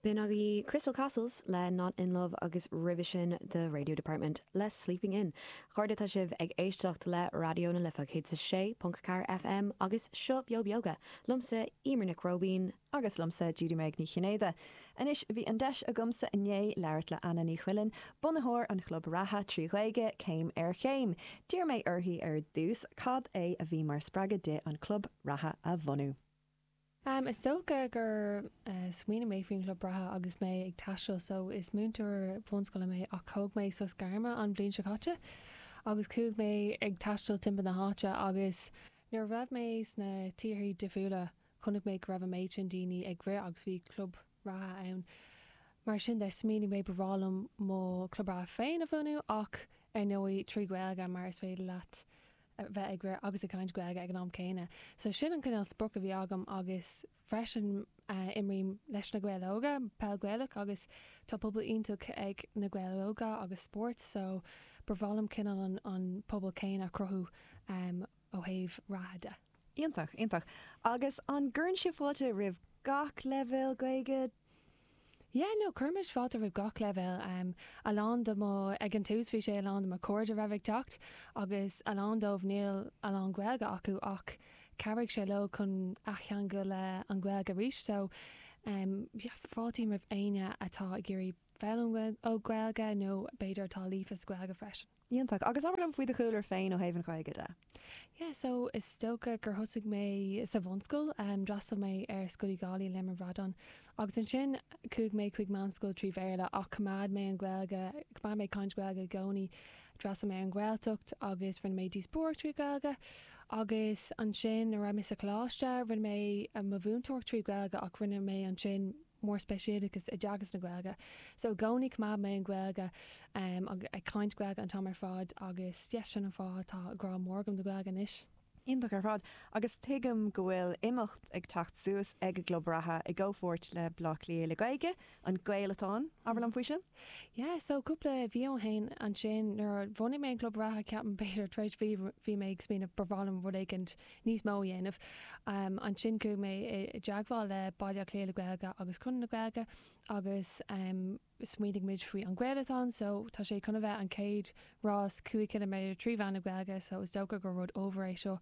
B'in agaibh Crystal Castles le Not In Love agus roimhe sin The Radio Department le Sleeping In. Chairde tá sibh ag éisteacht le Raidió na Life 106.4 FM agus seo Beo Beoga, liomsa Emer Nic Róibín, Agus liomsa Judy-Meg Ní Chinnéide. Anois bhí an deis agamsa inné labhairt le Anna Ní Chuilinn, bunaitheoir an chlub reatha trí Ghaeilge, Céim ar Chéim. D'iarr mé uirthi ar dtús cad é a bhí mar spreagadh di an club reatha a bhunú. Am, Is dócha gur smaoinigh mé faoin chlub reatha agus mé ag taisteal so is múinteoir bunscoile mé ach thóg mé sos gairme an bhliain seo caite agus chuaigh mé ag taisteal timpeall na hÁise agus nuair a raibh mé sna tíorthaí difriúla chonaic mé go raibh an méid sin daoine ag rith agus bhí club reatha ann. Mar sin de, smaoinigh mé ba bhreá liom mo chlub reatha féin a bhunú ach ar ndóigh trí Ghaeilge mar is féidir leat bheith ag rith agus ag caint Gaeilge ag an am céanna. So sin an cinéal sprioc a bhí agam agus freisin imrím leis Na Gaeil Óga, peil Ghaelach agus tá pobal iontach ag Na Gaeil Óga agus spórt so ba bhreá liom cineál an pobal céanna a chruthú. ó thaobh reatha de. Iontach, iontach. Agus an gcuireann sibh fáilte roimh gach leibhéal Gaeilge? Yeah, no, cuirimis fáilte roimh gach leibhéal. Em, a lán de mo, ag an tús bhí sé a lán de mo chairde a raibh ag teacht agus a lán dóibh níl a lán Gaeilge acu ach chabhraigh sé leo chun athcheangal le an Ghaeilge arís. So, em, yeah, fáiltím roimh éinne atá ag iarraidh foghlaim Gaeilge nó b'fhéidir atá líofa sa Ghaeilge freisin. Iontach. Agus abair liom faoi do chúlra féin ó thaobh an Ghaeilge de. Yeah so is dócha gur thosaigh mé sa bhunscoil, d'fhreastail mé ar Scoil Uí Dhálaigh, Léim an Bhradáin, agus ansin chuaigh mé chuig meánscoil trí Bhéarla ach choimeád mé an Ghaeilge, choimeád mé caint Ghaeilge i gcónaí. D'fhreastail mé ar an Ghaeltacht agus rinne mé díospóireacht trí Ghaeilge agus ansin nuair a raibh mé sa choláiste rinne mé mo mhúinteoireacht trí Ghaeilge ach rinne mé ansin, mórspeisialachas i dteagasc na Gaeilge. So i gcónaí choimeád mé an Ghaeilge agus ag caint Gaeilge an t-am ar fad agus yeah sin an fáth tá grá mór agam do Ghaeilge anois. Iontach ar fad. Agus tuigim go bhfuil imeacht ag teacht suas ag an gclub reatha i gcomhpháirt le Bleá Cliath le Gaeilge, An Gaelatán. Abair liom faoi sin? Yeah so cúpla mhí ó shin ansin nuair a bhunaigh mé an gclub reatha ceapaim b'fhéidir tar éis mhí bhí mé ag smaoineamh ba mhaith liom rud éicint níos mó a dhéanamh. Ansin chuaigh mé i dteagmháil le Baile Átha Cliath le Gaeilge agus Conradh na Gaeilge agus smaoinigh muid faoi An Gaelatán so tá sé chun a bheith an chéad rás cúig chiliméadar trí mheán na Gaeilge so is dócha gur rud ollmhór é seo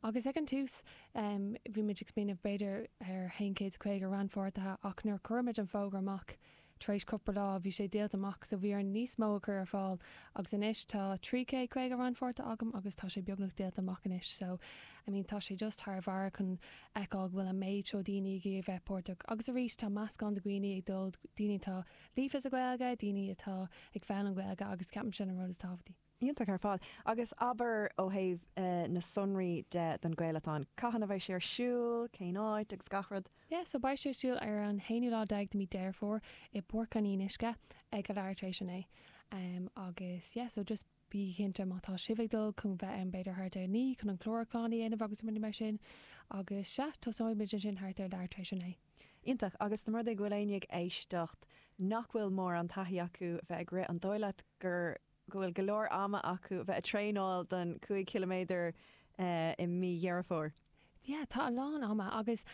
agus ag an tús bhí muid ag smaoineamh b'fhéidir ar haon chéad is caoga rannpháirtithe ach nuair a chuir muid an fógra amach Tar éis cúpla lá bhí sé díolta amach so bhí orainn níos mó a chur ar fáil agus anois tá trí chéad caoga rannpháirtí agam agus tá sé beagnach díolta amach anois so I mean tá sé just thar bharr chun fheiceáil go bhfuil an méid seo daoine ag iarraidh bheith páirteach agus arís tá meascán de dhaoine ag dul daoine atá líofa sa Ghaeilge, daoine atá ag foghlaim Gaeilge agus ceapaim sin an rud is tábhachtaí. iontach ar fad. Agus abair ó thaobh na sonraí de don Gaelathon, cathain a bheidh sé ar siúl, cén áit agus gach rud? Yeah so beidh sé ar siúl ar an aonú lá déag de mhí Deireadh Fómhair i bPáirc an Fhionnuisce ag a leath tar éis a naoi am agus yeah so just bígí cinnte má tá sibh ag dul chun bheith ann b'fhéidir thart ar a naoi chun an clárúchán a dhéanamh agus rudaí mar sin agus sea tosóidh muid ansin thart ar a leath tar éis a naoi. Iontach. Agus más rud é go bhfuil éinne ag éisteacht nach bhfuil mórán taithí acu bheith ag rith an dóigh leat gur go bhfuil go leor ama acu bheith ag traenáil don cúig chiliméadar i mí Dheireadh Fómhair. Yeah tá a lán ama agus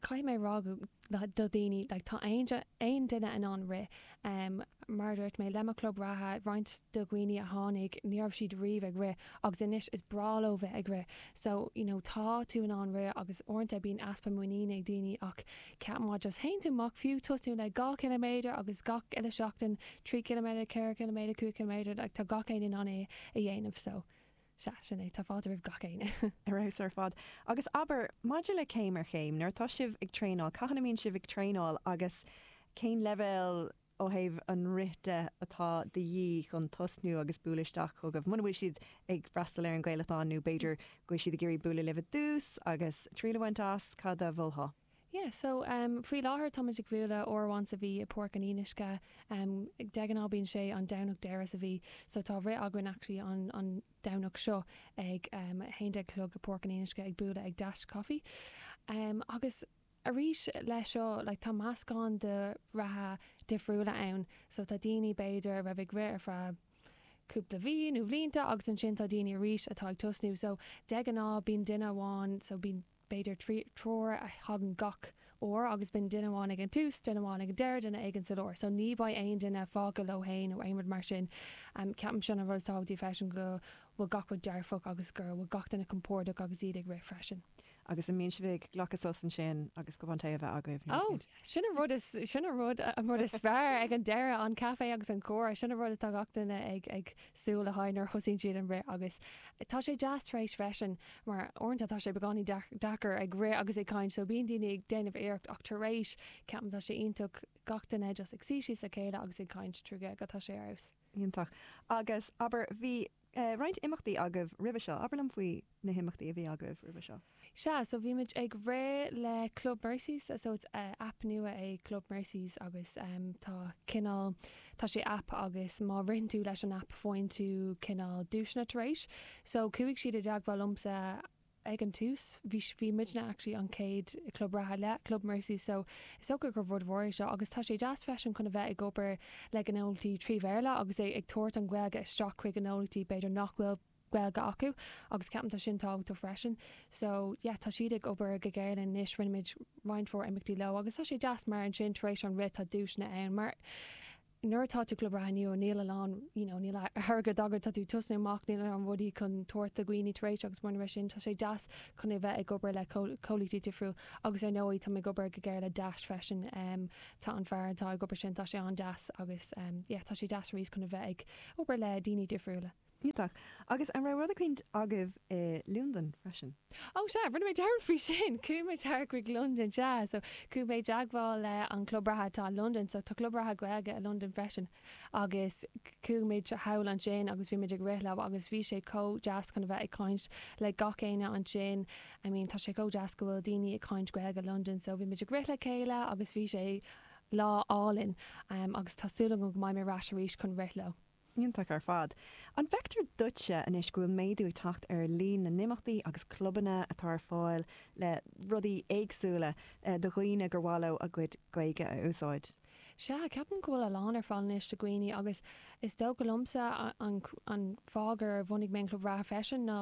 caithfidh mé rá go do daoine like tá aon aon duine in ann rith em mar a dúirt mé le mo chlub reatha roinnt de na daoine a tháinig ní raibh siad riamh ag rith agus anois is breá leo bheith ag rith so you know tá tú in ann rith agus uaireanta bíonn easpa muiníne ag daoine ach Ceapaim just faigheann tú amach fiú tosnú le dhá chiliméadar agus gach uile seachtain, trí chiliméadar, ceithre chiliméadar, cúig chiliméadar like tá gach éinne in ann é a dhéanamh so sea, sin é, tá fáilte roimh gach éinne. Ar fheabhas ar fad. Agus abair, maidir le céim ar chéim, nuair atá sibh ag traenáil, cathain a mbíonn sibh ag traenáil agus cén leibhéal ó thaobh an rith de, atá de dhíth chun tosnú agus bualadh isteach chugaibh. Muna bhfuil siad ag freastal ar an Gaelathon, nó b'fhéidir go bhfuil siad ag iarraidh bualadh libh ar dtús agus triail a bhaint as, cad a mholfá? Yeah so em faoi láthair táimid ag bualadh uair amháin sa mhí i bPáirc an Fhionnuisce em de ghnáth bíonn sé an Domhnach deireadh sa mhí so tá rith againn actually an an Domhnach seo ag em a haon déag a chlog i bPáirc an Fhionnuisce ag bualadh ag Dash Coffee em agus arís leis seo like tá meascán de reathaithe difriúla ann so tá daoine b'fhéidir a raibh ag rith ar feadh cúpla mhí nó bhlianta agus ansin tá daoine arís atá ag tosnú so de ghnáth bíonn duine amháin so bíonn b'fhéidir trí triúr a thagann gach uair agus bíonn duine amháin ag an tús duine amháin ag an deireadh duine éigin sa lár so ní bheidh aon duine fágtha leo fhéin nó aon rud mar sin em ceapaim sin an rud is tábhachtaí freisin go bhfuil gach rud dearfach agus go bhfuil gach duine compordach agus iad ag rith freisin. Agus an mbíonn sibh ag glacadh sos ansin agus cupán tae a bheith agaibh nó Oh, God, sin an rud is, sin an rud, an rud is fearr ag an deireadh, an caife agus an comhrá, sin an rud atá gach duine ag, ag súil le haghaidh nuair a thosaíonn siad an rith agus tá sé deas tar éis freisin mar uaireanta tá sé beagáinín deac, deacair ag rith agus ag caint so bíonn daoine ag déanamh iarracht ach tar éis, ceapaim tá sé iontach gach duine just ag suí síos le chéile agus ag caint trí Ghaeilge tá sé ar fheabhas. Iontach. Agus, abair, bhí eh, roinnt imeachtaí agaibh roimhe seo. Abair liom faoi na himeachtaí a bhí agaibh roimhe seo. Sea, so bhí muid ag rith le Club Mercy's, so it's eh, aip nua é Club Mercy's agus em, tá cineál, tá sé aip agus má ritheann tú leis an aip faigheann tú cineál duaiseanna tar éis. So chuaigh siad i dteagmháil liomsa eh, ag an tús bhí, bhí muidne actually an chéad club reatha le Club Mercy so is dócha gur rud mhór é seo agus tá sé deas freisin chun a bheith ag obair le gnólachtaí trí Bhéarla agus ag tabhairt an Ghaeilge isteach chuig gnólachtaí b'fhéidir nach bhfuil Gaeilge acu agus ceapaim tá sin tábhachtach freisin so yeah tá siad ag obair go géar linn anois rinne muid roinnt mhór imeachtaí leo agus tá sé deas mar ansin tar éis an rith tá duaiseanna ann mar nuair atá tú club reatha nua níl a lán you know níl airgead agat tá tú tosnú amach níl a lán rudaí chun tabhairt do dhaoine tar éis agus mar gheall ar sin tá sé deas chun a bheith ag obair le comhlachtaí difriúil agus ar ndóigh táimid ag obair go géar le deais freisin um tá an fear atá ag obair sin tá sé an-deas agus um yeah tá sé deas arís chun a bheith ag obair le daoine difriúla Iontach. Agus an raibh rud eicínt agaibh i Londain freisin? Ó sea, rinne mé dearmad faoi sin! Chuaigh muid thall chuig Londain, sea. So, chuaigh mé i dteagmháil le an club reatha atá i Londain. So, tá club reatha Gaeilge i Londain freisin. Agus chuaigh muid thall ansin agus bhí muid ag rith leo agus bhí sé chomh deas chun a bheith ag caint le gach éinne ansin. I mean, tá sé chomh deas go bhfuil daoine ag caint Gaeilge i Londain. So, bhí muid ag rith le chéile agus bhí sé lá álainn. Agus tá súil agam go mbeidh mé ar ais arís chun rith leo. Iontach ar fad. An bhfeictear duitse anois go bhfuil méadú ag teacht ar líon na n-imeachtaí agus clubanna atá ar fáil le rudaí éagsúla do dhaoine gur mhaith leo a gcuid Gaeilge a úsáid? Sea, ceapaim go bhfuil a lán ar fáil anois do dhaoine agus is dócha liomsa an fáth gur bhunaigh mé an Club Reatha freisin ná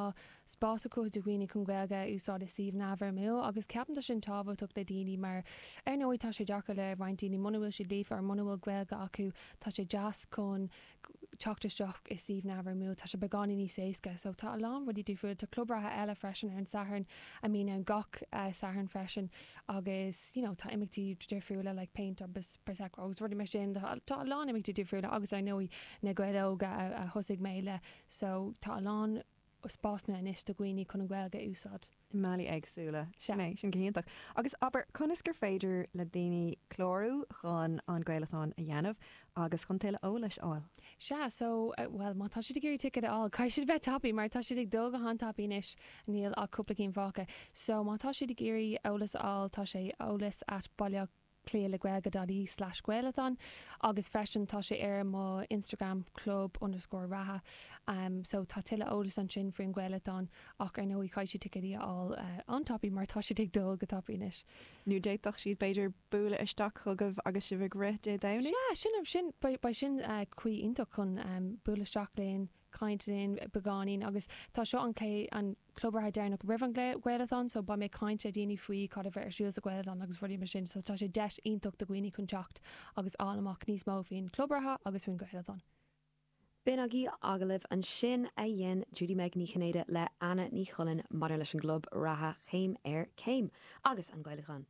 spás a cruthú do dhaoine chun Gaeilge a úsáid i suíomh neamhfhoirmiúil agus ceapaim tá sin tábhachtach le daoine mar ar ndóigh tá sé deacair le roinnt daoine muna bhfuil siad líofa or muna bhfuil Gaeilge acu tá sé deas chun teacht isteach i suíomh neamhfhoirmiúil tá sé beagán níos éasca so tá a lán rudaí difriúil tá club reatha eile freisin ar an Satharn a mbíonn ann gach Satharn freisin agus you know tá imeachtaí difriúla like péint agus prosecco agus rudaí mar sin tá a lán imeachtaí difriúla agus ar ndóigh Na Gaeil Óga a thosaigh mé le so tá a lán spásanna anois do dhaoine chun an Ghaeilge a úsáid. i mbealaí éagsúla. Sin é. Sin go hiontach. Agus, abair, conas gur féidir le daoine clárú chun an Gaelathon a dhéanamh agus chun tuilleadh eolais a fháil? Sea, so, bhuel, má tá siad ag iarraidh ticead a fháil, caithfidh siad bheith tapaidh mar tá siad ag dul go han-tapaidh anois, níl ach cúpla cinn fágtha. So, má tá siad ag iarraidh eolas a fháil, tá sé eolas at Baile Átha. Cliceáil ar gaeilge.ie slash gaelathon agus freisin tá sé ar mo Instagram club underscore reatha so tá tuilleadh eolas ansin faoin gaelathon ach ar ndóigh caithfidh siad ticéad a fháil an-tapaidh mar tá sé ag dul go tapaidh anois. Nó d'fhéadfadh siad, b'fhéidir, bualadh isteach chugaibh agus sibh ag rith Dé Domhnaigh? Sea, sin, sin, beidh sin caoi iontach chun bualadh isteach linn. caint linn beagáinín agus tá seo an, an club reatha deireanach roimh an gaelathon so beidh mé ag caint le daoine faoi cad a bheidh ar siúl sa ghaelathon agus rudaí mar sin so tá sé deis iontach do dhaoine chun teacht agus fháil amach níos mó faoin chlub reatha agus faoin ghaelathon. B'in agaibh agallamh ansin a dhein Judy-Meg Ní Chinnéide le Anna Ní Chuilinn maidir leis an gclub reatha Céim ar Chéim agus an gaelathon.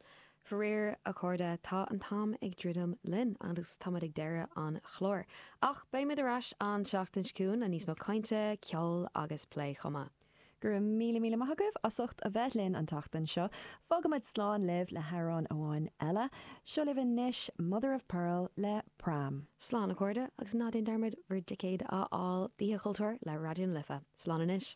Faraor, a chairde, tá an t-am ag druidim linn agus táimid ag deireadh an chláir. Ach beimid ar ais an tseachtain seo chugainn le níos mó cainte, ceoil agus plé chomh maith. Go raibh míle míle maith agaibh as ucht a bheith linn an tseachtain seo. Fágaimid slán libh le hamhrán amháin eile. Seo libh anois Mother of Pearl le Pram. Slán a chairde agus ná déan dearmad bhur dticéid a fháil d'Oíche Chultúir le Raidió na Life. Slán anois.